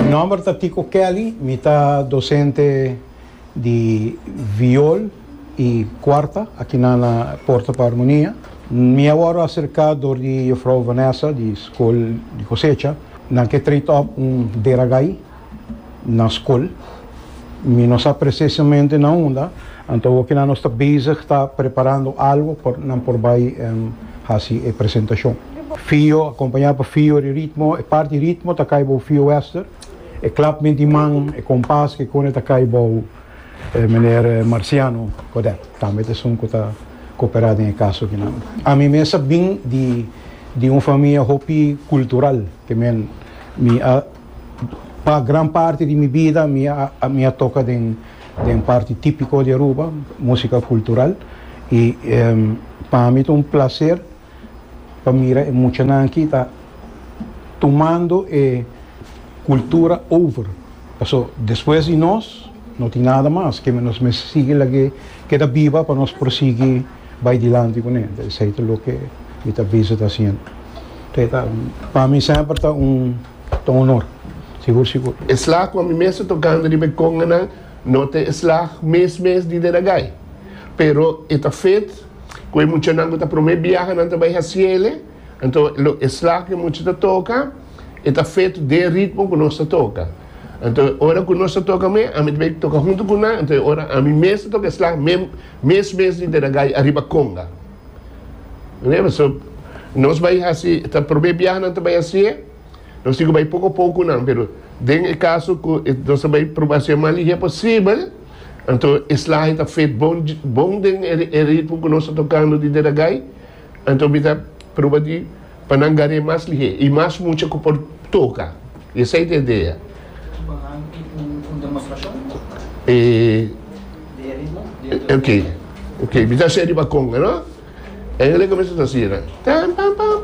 Nomber ta Tico Kelly, mi ta docente di viol y cuarta aki nan na Porto pa Armonia. Mi a worde acerca door di Jufrouw Vanessa di School di Cosecha. Nan ke treat op un deragai. na skol. Mi no sa presesamente na unda, anto awor kina nos ta bezig ta preparando algo pa nan por bai hasi e presentashon. Fio, akompañá pa fio di ritmo, e parti ritmo ta kai bou fio wester, e klapment di man, e kompas ke kone ta kai bou meneer Marciano Codet, tambe ta esun ku ta koperá den e kaso akinan. Ami mes a bin di un famia hopi kultural, te men mi a. Pa gran parti di mi bida mi a toka den den parti tipiko di Aruba, musika kultural, i pa mi ta un plaser pa mira e muchanan aki ta tumando e kultura over, paso despues di nos no tin nada mas, nos mester sigui lag'é keda biba pa nos por sigui. Bai dilanti cu ne, ta esey ta loke mi ta bisa ta haciendo. Te ta, pa mi semper ta un, ta un honor, sigur sigur. E slag cu ami mes ta tocando riba e conganan no ta e slag mes mes di den agay, pero e ta fet cu e muchanan cu ta prome biaha nan ta bay haciele, anto lo e slag cu e mucha ta toca e ta fet den ritmo cu nos ta toca. Anto e ora cu nos ta toca me, ami ta bay toca hunto cu nan, anto e ora ami mes ta toca e slag me, Mes mes di Deragai ariba Conga. Reba so nos bai hasi ta prome biaha nan ta bai hasié. Nos tin cu bai poco poco cu nan pero den e caso cu nos ta bai proba hasié mas lihe posibel anto e slahe ta fet bon bon den e ritmo cu nos ta tocando di Deragai. Anto mi ta pruba di pa nan gar'é mas lihé i mas mucha ku por toka. I esei ta e dea. Su bahan i un demostrashon di e ritmo diantu di e. Oke, mi ta hasié riba konga, no? Engeleka mester ta hasié nan. Tam-pam-pam-pam.